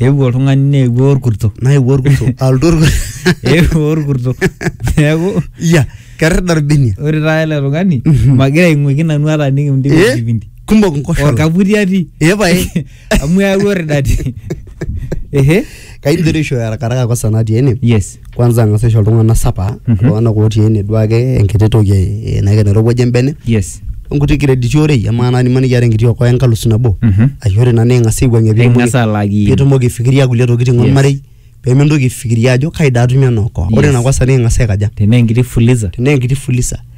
eewuo oltung'ani neewuo orkurto naewuo orkurto alotu orkurto eewuo orkurto neeku ya kerr darbinia ore taata ele tung'ani Mhm. magira aing'uiki nanu hata nikimdip Eh, enkipindi kumok nkoshola orkaputi atii Eh, pae. amu eewuo ridati ehe kaidim doi aishooyo arakaraka kosa natii ene yes kwanza ang'as aisho iltung'anak sapa Mhm. iltung'anak otii ene duake enkiti toki eh, naika nairowuaja embene yes onkuti krediti orei amaa naa nimaniki iata enkiti okoa enkalusu nabo Mhm. ashu ore ina naa ing'as aiwuang'ie pitumoki- Eng'as alaki. pitumoki aifikiria kulie tokitin Yes. ormarei pemintoki aifikiria ajo kai daa atumie ena okoa ore Yes. ina kosa naa ing'as aikaja tenaa enkiti fuliza tenaa enkiti fuliza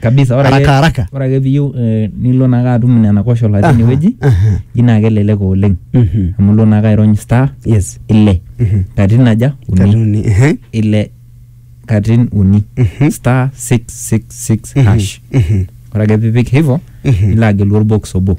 kabisa ore ake- Haraka, haraka. ore ake piyieu eh, nilo naake atum nena koshola Aha, tinewueji aha. ji naa kelelek oleng Mhm. amu ilo naake airony star yes ile Mhm. katitin aja uni katuni ehe. ile katitin uni Mhm. star 666 Mhm. hash Mhm. ore ake pipik hivo Mhm. nilo agelu orbox obo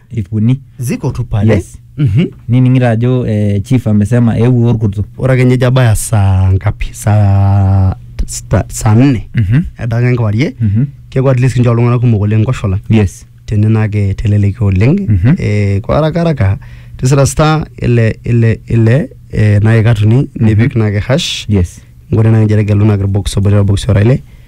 ip uni ziko tu pale Yes. Mhm. nining'ito ajo eh, chief amesema eewuo orkuto ore ake nyejo abaya saa ngapi saa sta- saa nne Mhm. edaka enkewarie Mhm. keeku at least kincho iltung'anak kumok oleng nkoshola yes tene naake teleleki oleng Mhm. eh, kwa haraka haraka tisira star ile ile ile eh, naye katuni nipik naake hash yes nkore naake injere gelu naake irbox obo lelo box ora ile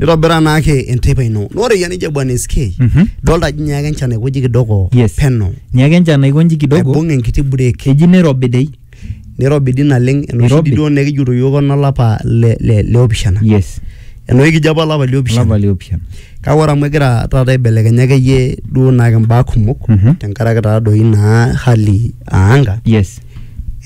nitobira naake enteipa ino na ore yanija bwana SK Mhm. dolta ajo nyaaka enchan aikoji kidogo Yes. peno nyaaka enchan aikonji kidogo aibung enkiti break eji nirobi dei nirobi di naleng enoshi Nirobi. di duo nekijoto yiok onolapa le, le, le opishana yes enoshi kijo apa olapa le opishana olapa liopishana kake ore amu egira taata aibelekenya akeyie duo naake mbaa kumok Mhm. tenkaraki taadoi naa hali aanga yes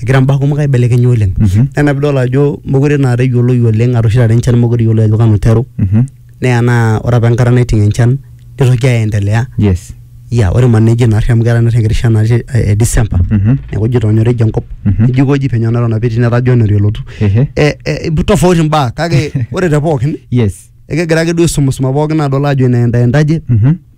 egira mbaa kumok aibelekenya oleng mm -hmm. ena pidol ajo mokure naa eyioloi oleng arashu oshi taata enchan mokure eyioloi ajo kanu iteru mm -hmm. neya naa ore apa enkata naiting enchan nitoki aendelea yes ya ore man neji naarri amu keetae naarri enkiti shan natii e December mm -hmm. neeku ijo tonyorija enkop mm -hmm. nijo ikoji penyo neton apa etii netaa January elotu e, e, tofauti imbaa kake ore te pookin yes ekegira ake duo aisumisuma pookin adol ajo inaendaendaje mm -hmm.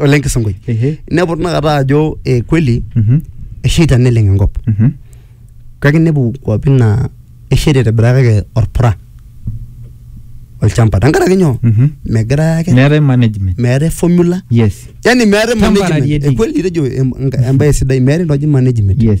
ole nkisongoi Ehe. inepu tinakata ajo eh, kweli Mhm. esheita neleng enkop Mhm. kake inepu kwapi naa esheita aitobiraki kake orpura olchamba tenkaraki nyoo Mhm. megira ake meetae management meetae formula yes yani meetae Temporary management etii. ekweli tejo em- enka- embae sidai meetae entoki naji management yes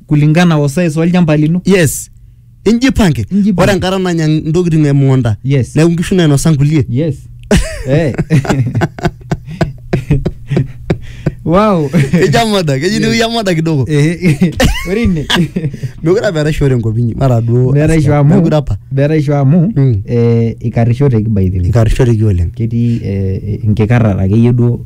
kulingana o size olchamba lino yes injipange Injipange. ore enkata nanya ntokitin emukunta Yes. neeku nkishu nainosa nkulie yes Eh. wow ijamoda keji niu yamoda kidogo Eh, ore ine mekure apa eetae shore enkop inyi mara duo beraisho amu mekure apa beraisho amu Mm. eh, ikarishoteki by the way ikarishoreki oleng ketii eh, enkikarrata akeyie duo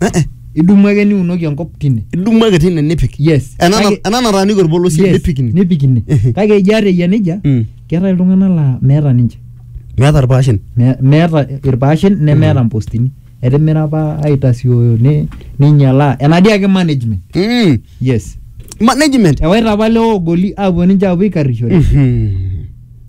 Eh, eh. idumu ake niunoki enkop tine idumu ake tine nipik yes ena na- Kake- ena nataaniki orpolosie yes, nipik ine nipik ine Ehe. kake ijo ata eyia nejia Mm. keetae iltung'anak laa meeta ninche meeta irpaashen Me- meeta irpaashen nemeeta mpostini etimira apa aitasioyo ni- ninyialaa enadii ake management Mm. yes management ewaita apa leogoli apuo ninche apuo aikarrishore Mhm.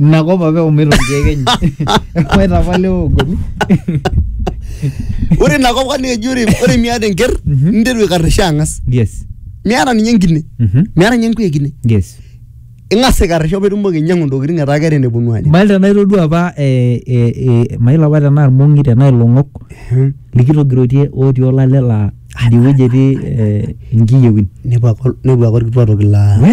ina kop apa eumito nkeek enye ewaita apa lewa ogoli ore ina kop kani eji ore ore miata enker Mhm. ninteru aikarisha ang'as yes miata ninye enkine Mhm. miata ninye enkuya ekine yes ing'as aikarisho pitumoki ainyiang'u ntokitin etaa keeta eneponu aanya mail tenaa itodua apa eh, eh, eh, mail apa tenaa irmong'i tenaa ilong'ok Mhm. likitogirotie otii olale laa idiwueji etii eh, inkiyewin nepuo ake nepuo ake orkituaa toki laa we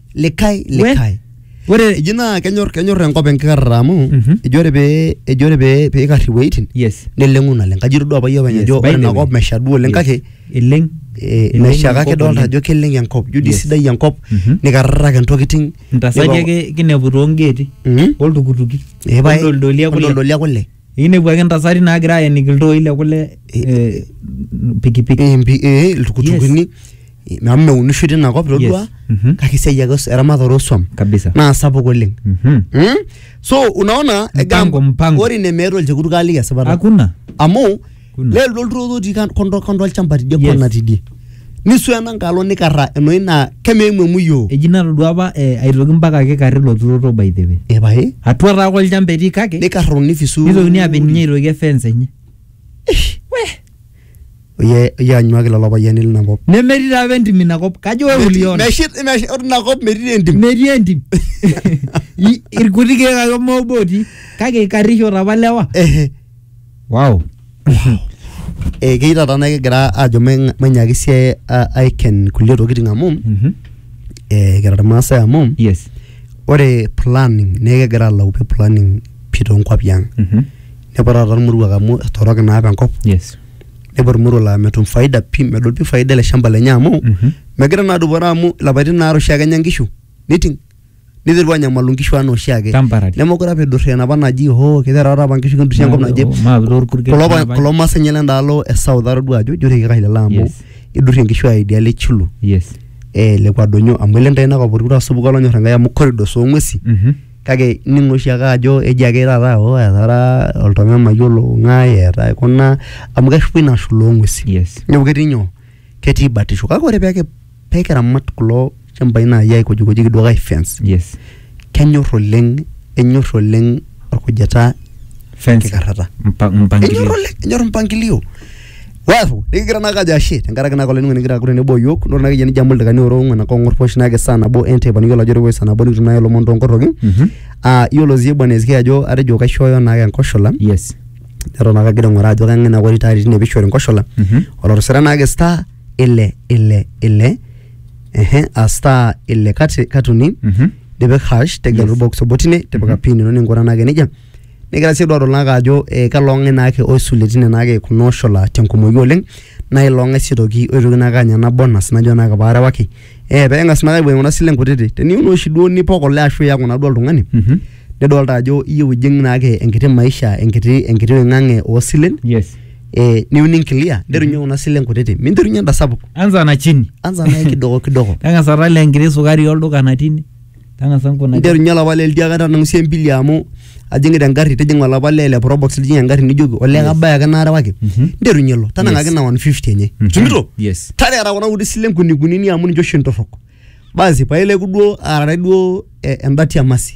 likae likae ore eji naa kenyor kenyor enkop enkikarrata amu Mhm. eji ore pee eji ore pee pee ikarr iwueitin yes neleng'u naleng kaji itodua apa iyie openy Yes, ajo by ore the ina way. kop mesha duo oleng Yes. kake eleng eh, eleng mesha kake enkop idolta oleng. ajo keleng enkop ijo dii Yes. sidai enkop Mhm. nikarrarraka intokiting ntasati Nipa- ake kinepu toongeeti Mhm. oltukutuki Eh, pae. oldoldolia kule Oldoldolia kule Ikinepu ake ntasati naagira aeniki iltooi le kule eh, pikipiki. Eh, mpi- eh, iltukutukuni amu meunishoi tina kop todua Yes. Mhm. kake esiai ake os- eramatare oswam Kabisa. naa sapuk oleng Mhm. Mm? so unaona egaa- Mpango, mpango. ore ine meeta olchekut kaaliki esipata Hakuna. amu Kuna. lelo lolturoto otii kan- kondo kondo olchamba tidie Yes. kona tidie nisu ena nkalo nikarra enoi naa kemeimu emuyioo eji natodua apa eh, aitoki mpaka ake karri ilo turoto by the way epae atua taa ake olchamba etii kake nikarro nifisu nitokini apik ninye aitoki efence enye oye oye anyuaki lelo payiani lina kop nemetii taa apa entim inakop kajo wewe uliona Meshi- meshi- ore ina kop metii entim metii entim I- irkuti keek ake mobo otii kake ikarrisho apa lewa Ehe. Wow. Ekeyieu taata naa kigira aajo mainyiaki sii aiken inkulie tokitin amu Mhm. eh, kira irmaasai amu Yes. ore planning naa ekigira aalau pee planning pii toonkuapi ang. Mhm. Nepuo taata irmoruak amu etorok naa apa enkop Yes. nepuo irmoruak laa metum faida pii medol pii faida ele shamba lenye amu Mhm. megira naa adupore amu ilapaitin aare oshiake enya inkishu niting. niterua anyamalu nkishu anaa oshiake Temporary. nemekure apa idurri enapa naji hoo kiterewa apa nkishu kindurri enkop naje Maa pilo orpurkel. kulo pa- kulo maasai nye lendaalo e south atodua ajo ijo rekikai lelo amu Yes. idurri enkishu ai idialo e chulu Yes. eh, lekwa donyo amu ele ntae inakop orkut asupuku olonyor enkai amu corridors oong'wesi Mhm. kake ning'o oshiake ajo eji ake taata o etara oltome mayiolo ng'ae eeta kuna amu keshupa ina shula oong'wesi Yes. neeku ketii nyoo ketii batisho kake ore pee pee kiramat kulo shambai naaji aikojikojiki duo ai fence yes kenyor oleng enyor oleng orkujita fence enkikarrata mpa- enyor mpangilio oleng enyor mpangilio wafu nikigira naa kajo ashe tenkaraki naa kolainingo nikigira aku tenebo o yiok nore naa keyie nijo amu ildaikani ora ong'uan ake ong'or posh naake saa nabo enteipa niyiolo ajo ore saa nabo nikitum naaji ilomon toonkorroki Mhm. ah iyiolo sii bwana SK ajo atejo kaishooyo naake enkoshola yes neton ake agira aing'uraa ajo kang'e naa kori taata tine pishori nkoshola Mhm. olotisira naake star ile ile ile ehe a star ile kati katuni Mhm. nipik hash tegelu Yes. box obo tine tipika Mhm. pin ino ningura naake nejia nigira sii duo naake ajo eh, kalo ng'ae naake oisulie tine naake kuna oshola tenkumoi oleng naa ilo ng'ae sii toki oitoki naake anya ena bonus najo naake paarewaki eh peeng'as naake aibung kuna silen kutiti teniun oshi duo nipok ole ashu iyaku naa duo oltung'ani Mhm. nidolta ajo iyieu ijing naake enkiti maisha enkiti enkiti wing'ang'e oosilen Yes. eh, niu ninkilia nterunye kuna silen kutiti minterunye enda sapuk anza na chini anza naye kidogo kidogo tang'asa tala enkiti sukari olduka natii ine tang'asa nkuna nterunye olapa lee litiaka tanang'usie embili amu ajing'ita engarri tijing'a olapa lee le probox lijing engarri nijoki olee kabaya ake naarewaki Mhm. nterunye ilo tanang'aki Yes. na 150 enye Mhm. tumito Yes. tareara kuna kuti silen kunikunini amu ninche oshi ntorrok basi paileku duo aarare duo eh, endati amasi